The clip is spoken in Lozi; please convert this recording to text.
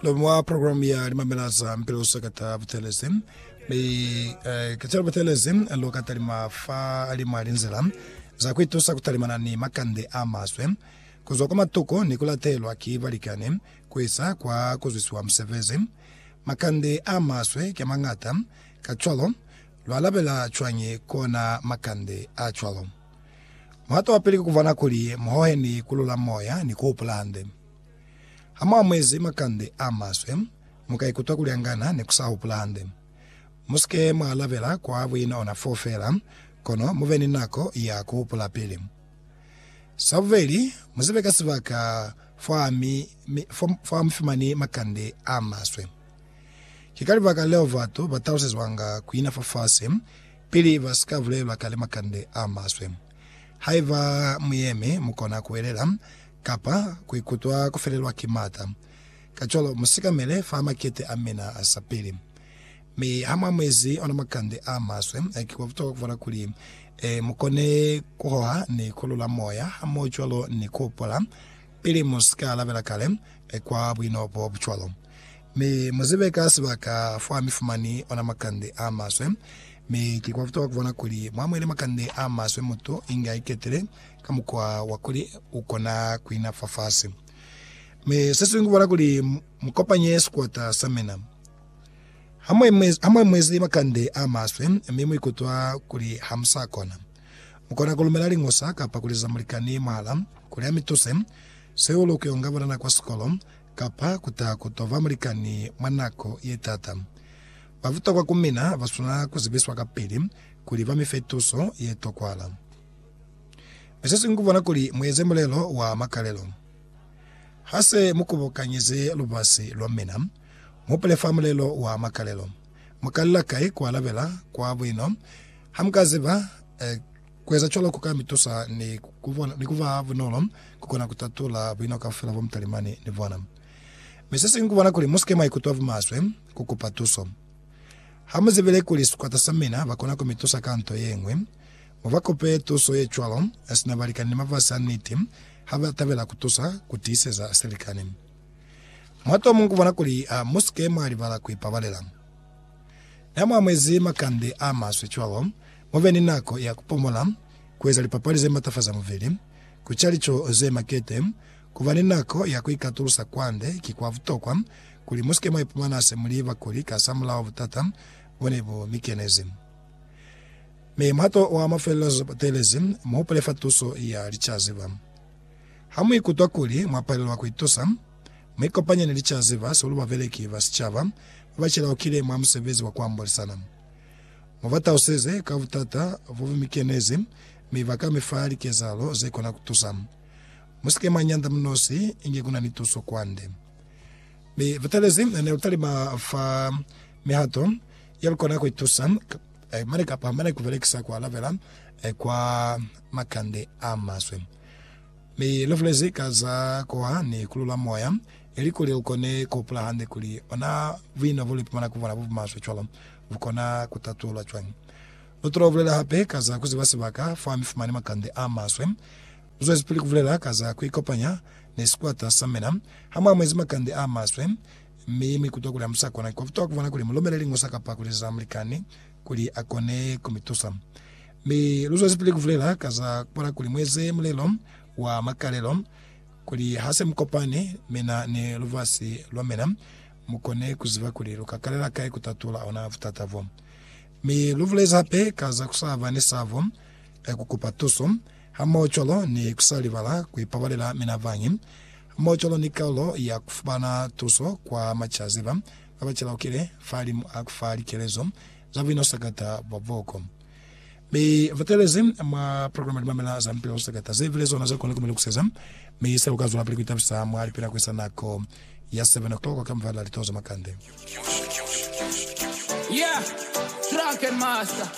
Lwa mwa programu ya Limamela za Mpiluso ka ta Butelezi, mi eh, ka ta butelezi lu ka talima fa limwa linzila za ku itusa ku talimana ni makande a maswe, ku zwa kwa matuko ni ku latelwa ki balikani, ku isa kwa ku zwisiwa musebezi. Makande a maswe ki a mañata, kacwalo lwa alabela cwañi kona makande a cwalo? Muhato wa pili ki ku bona kuli mu hohe ni ku lula moya ni ku hupula hande. Ha mu amuezi makande a maswe, mu ka ikutwa kuli angana ni ku sa hupula hande. Mu si ke mwa alabela kwa buinona foo feela, kono mu be ni nako ya ku hupula pili. Sa bubeli, mu zibe ka sibaka fo ha mu fumani makande a maswe. Ki ka libaka leo batu ba talusezwanga ku ina fafasi pili ba si ka bulelwa kale makande a maswe. Haiba mu yemi, mu kona ku hwelela Kapa ku ikutwa ku felelwa ki m'ata. Kacwalo, mu sikamele fa makete a mina a sa pili. Mi ha mu amuezi ona makande a maswe, ki kwa butokwa ku bala kuli mu kone ku hoha ni ku lula moya hamohocwalo ni ku hopola pili mu si ka labela kale kwa buino bo bu cwalo. Mi mu zibe ka sibaka fa mi fumani ona makande a maswe. Mi ki kwa butokwa ku bona kuli mu amuele makande a maswe mutu inge a iketile ka mukwa wa kuli u kona ku ina fafasi. Mi se siñwi ku bala kuli mu kopanye sikwata sa mina. Ha mu emezi makande a maswe mi mu ikutwa kuli ha mu sa kona, mu kona ku lumela liñosa kapa ku liza mulikani mwahala kuli a mi tuse, seo lu kuyonga banana kwa sikolo, kapa ku ta ku to ba mulikani mwa nako ye t'ata. Ba butokwa ku mina ba swanela ku zibiswa kapili kuli ba mi fe tuso ye tokwahala. Mi se singwi kubona kuli mueze mulelo wa makalelo. Ha se mu kubukanyize lubasi lwa mina, muhupule fa mulelo wa makalelo. Mukalela kai kualabela kwa buino? Ha muka ziba, kueza cwalo kuka mitusa ni kuba bunolo kukona kutatula buino kaufela bo mutalimani ni bona. Mi se singwi kubona kuli musike mwaikutwa bumaswe kukupa tuso. Ha muzibile kuli sikwata sa mina bakona kumitusa ka nto yeñwi, Mu ba kope tuso ye cwalo, sina balikani ni mafasi a niti ha ba tabela ku tusa ku tiiseza silikani. Mwa to muñwi ku bona kuli, A mu si ke mwa libala ku ipabalela. Ni ha mwa amuhezi makande a maswe cwalo, mu be ni nako ya ku pomola, ku eza lipapali ze matafaza mubili, ku ca lico ze makete. Ku ba ni nako ya ku ikatulusa kwande ki kwa butokwa kuli mu si ke mwa ipumana se mu li bakuli kasamulaho butata bo ne bu mi kenezi. Mi mwato wa mafelelo zwa batelezi, muhupule fa tuso ya licaziba. Ha muikutwa kuli mwapalelwa kuitusa, muikopanye ni licaziba sihulu babeleki ba sicaba babacelaukile mwa musebezi wa kuambolisana. Mubatauseze ka butata bobumikenezi mi baka mifa likezahalo zekona kutusa. Musike mwanyanda munosi inge kunani tuso kwande. Mi batelezi nelutalima fa mihato Yeo ikona ku itusa mane kapa mane ku belekisa ku alabela kwa makande a maswe. Mi lu bulezi ka za kuha ni kulula moya, ili kuli ukone ku hupula hande kuli ona buino bu lu ipumana ku bona bu bumaswe cwalo bu kona ku tatulwa cwañi. Lu tolo bulela hape ka za ku ziba sibaka fa mi fumani makande a maswe. Lu zwezipili ku bulela ka za ku ikopanya ni sikwata sa mina ha mu amuezi makande a maswe. Mi mi kutwa kuli hamusa kona kwa kutwa kuvona kuli mulomele lingusa kapa kuleza mulikani kuli akone kumitusa. Mi luzwezipili kuvulela ka za kupola kuli mueze mulelo wa makalelo kuli hase mukopani mina ni lubasi lwamina mukone kuziba kuli luka kalela kai kutatula ona butata bo. Mi luvulezi hape ka za kusaba ni sabo ya kukupa tuso, hamoho cwalo ni kusalibala kuipabalela mina bañi. Mocolo ni kalulo ya kufumana tuso kwa macaziba ba ba calaukile fahalimu a kufa likelezo za buinasakata bwa boko. Mi fa telezi mwa programa Limamela za Mipila Usakata, ze bile zona ze kona ku mi lukuseza, mi se uka zwelapili ku itabisa mwa lipina ku isa nako ya 7 o'clock ka mubala litozo makande.